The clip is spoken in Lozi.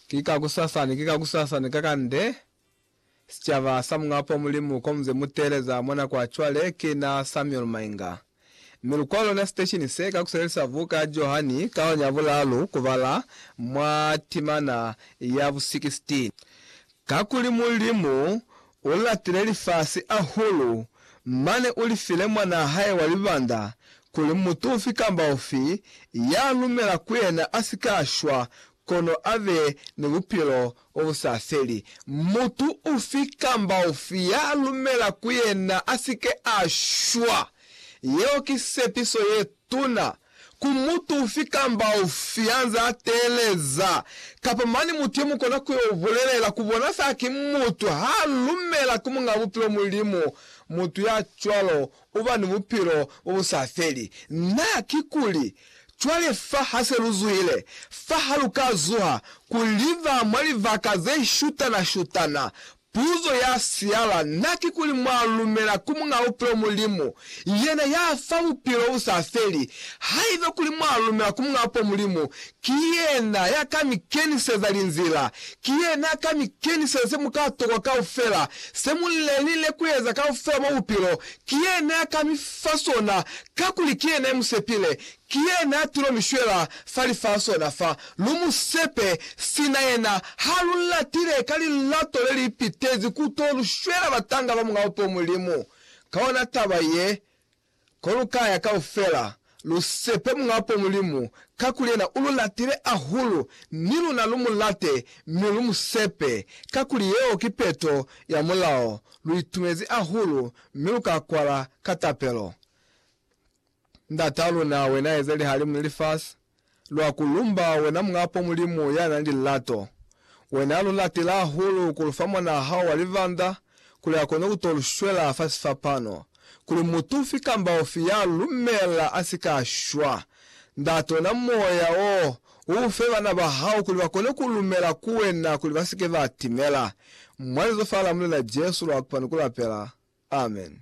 Ki kakusasani, ki kakusasani kakande, sicaba sa Muñapo Mulimu komuze muteeleza mwa nako ya cwale ki na Samuel Mainga. Mi lukwalo lwa siteshini se kakuselelisa buka ya Johani kaoni ya bulaalu kubala mwa timana ya bu 16. Kakuli Mulimu u latile lifasi ahulu, mane u li file Mwanaa hae wa libanda, kuli mutu ufi kamba ufi ya lumela ku yena a si ka shwa, kono a be ni bupilo bo bu sa feli. Mutu ufi kamba ufi ya lumela ku yena a si ke a shwa. Yeo ki sepiso ye tuna Ku mutu ufi kamba ufi anze ateleza, kapa mane mutu ye mukona ku yo bulelela ku bona fela ki mutu ha lumela ku Muñ'a Bupilo Mulimu, mutu ya cwalo uba ni bupilo bo bu sa feli. Na, kikuli, cwale fa ha se lu zuhile, fa ha lu ka zuha ku liba mwa libaka ze shutana-shutana, Puzo ya siala na kikuli mwa lumela ku Muñ'a Bupilo Mulimu, yena ya fa bupilo bu sa feli. Haiba kuli mwa lumela ku Muñ'a Bupilo Mulimu, ki yena ya ka mi keniseza linzila. Ki yena ya ka mi keniseza se mu ka tokwa kaufela, se mu lelile ku eza kaufela mwa bupilo. Ki yena ya ka mi fa sona, kakuli ki yena ya mu sepile. Ki yena a tilo mi shwela fa lifasi ona fa. Lu mu sepe, sina yena ha lu latile ka lilato le li pitezi ku to lu shwela batanga ba Mulao po Mulimu. Ka ona taba ye, ko lu ka ya kaufela, lu sepe Mulao po Mulimu, kakuli yena u lu latile ahulu, ni luna lu mu late mi lu mu sepe, kakuli yeo ki peto ya Mulao. Lu itumezi ahulu mi lu ka kwala ka tapelo. Ndata luna, wena eza lihalimu ni lifasi, lwa ku lumba, wena Muñ'a po Mulimu ya na ni lilato. Wena lu latile hahulu ku lu fa mwan'a hao wa libanda, kuli a kone ku to lu shwela fa sifapano, kuli mutu ufi kamba ufi ya lu lumela a si ka shwa. Ndate, ona Moya wo, u u fe bana ba hao, kuli ba kone ku lumela ku wena, kuli ba si ke ba timela. Mwa lizo fa la Mulena Jesu lwa kupani ku lapela. Amen.